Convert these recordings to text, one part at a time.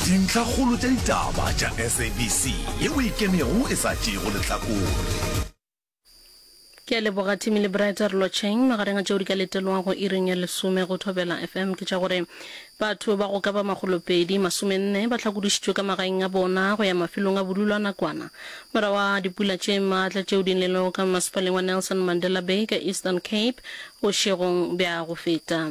Dintlhakgolo tša ditaba tša SABC ye o ikemego e sa tšeego lehlakore. Ke a leboga Timmy le Brett re lotšheng. Magareng a tšeo di ka letelwago iring ya lesome go Thobela FM ke tša gore batho ba go ka ba makgolo pedi masome nne ba hlakodišitšwe ka magaeng a bona go ya mafelong a bodulo a nakwana morago ga dipula tše maatla tšeo di nelego ka masepaleng wa Nelson Mandela Bay ka Eastern Cape Bošegong bja go feta,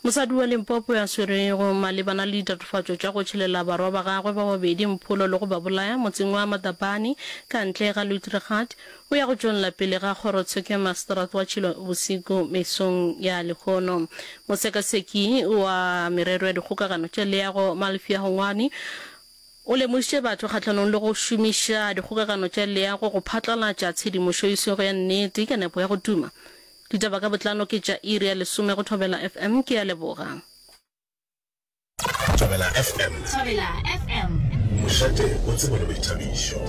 mosadi wa Limpopo yo a swerwego malebana le ditatofatšo tša go tšhelela barwa ba gagwe ba babedi mpholo le go ba bolaya motseng wa Matabane ka ntle ga Luitregat o ya go tšwella pele ga kgorotsheko ya maseterata wa Tšhilo bosigo mesong ya lehono. Mosekaseki wa merero ya dikgokagano tša leago Malfia Hongwani o lemošitše batho kgahlanong le go šomiša dikgokagano tša leago go phatlalatša tshedimošo e sego ya nnete ka nepo ya go tuma Ditaba ka botlalo ke tša iri ya lesome go Thobela FM. Ke a leboga. Thobela FM. Thobela FM. Mošate o tsebo le boithabišo.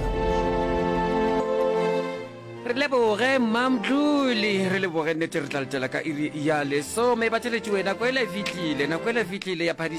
Re leboge mmamdluli re leboge nnete re tla letela ka iri ya lesome ba tšeletši wena ko ele fitlile nako ele fitlile ya phadi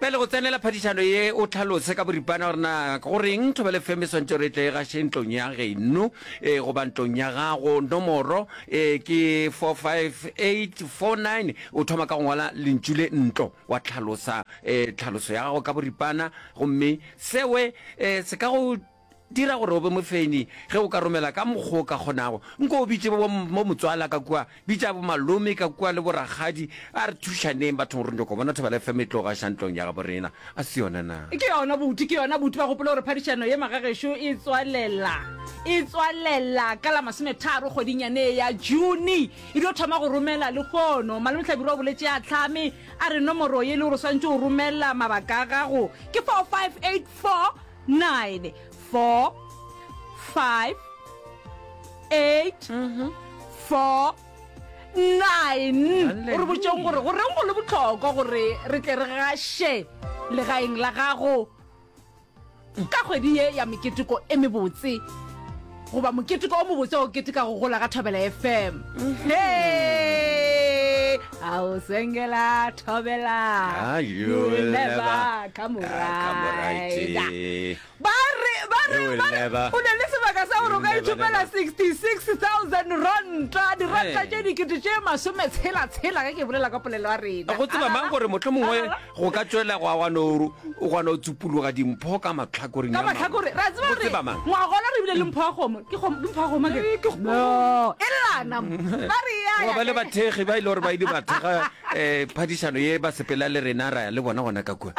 Pele go tsenela phadišano ye, o hlalose ka boripana gore na go reng thoba le feme swantšo gore e tle e gaše ntlong ya geno e, goba ntlong ya gago. Nomoro e ke 45849. O thoma ka go ngwala lentšu le ntlo, wa hlalosa e, tlhaloso ya gago ka boripana, gomme sewe e, se ka go Dira gore o be mofeini ge o ka romela ka mokgo o ka kgonago. Nko o bitše bo motswala ka kua, bitša bo malome ka kua le bo rakgadi. A re thušaneng bathong re nyoko bona thobela FM e tlo gaša ntlong ya gabo rena. A se yona na? Ke yona bouti, ke yona bouti. Ba gopole gore phadišano ye magagešo e tswalela, e tswalela ka la masometharo kgweding yane ye ya June. E dio thoma go romela lehono. Malome Hlabirwa o boletše a hlame a re nomoro ye le gore o swantše o romela mabaka a gago ke 4584. nine, four, five, eight, four, nine. O re botšong gore go reng go le botlhokwa gore re tle re gaše legaeng la gago ka kgwedi ye ya meketeko e mebotse. goba moketeko o mobotse o keteka go gola ga thobela fm Hey! a o sengela thobela Ah, you You will will never never come come right. right. Eh. ba re ba re You will ba re never- o na le sebaka sa gore o ka You will never, itshopela never. 66000 ranta diranta Hey. tše dikete tše masome tshela tshela ge ke bolela ka polelo ya rena go tseba mang gore motlho mongwe go ka tšwela go agwa noru o kgona go tsupologa dimpho ka matlhakoring ka matlhakore ra tseba gore ngwagola re bile le mpho ya kgomo ke mpho ya kgomo e lelana ba re ya ba le bathegi ba ile gore ba ile ba thega um phadišano ye ba sepela le rena ra ya le bona gona ka kua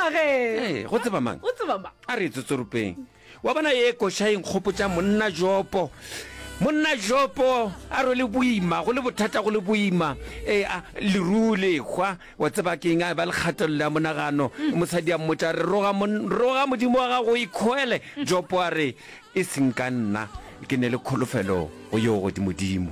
go tseba mang a re e tsotsoropeng Wa bona ye koša e nkgopotša monna Jopo. Monna Jopo a rwele boima, go le bothata, go le boima. E, a, leruu le hwa, wa tseba ke eng, a ba le kgatelelo ya monagano. Mm. Mosadi a mmotša, re roga, mon, roga modimo wa gago o ikhoele. Mm. Jopo a re, e seng ka nna, ke ne le kholofelo go yo godimodimo.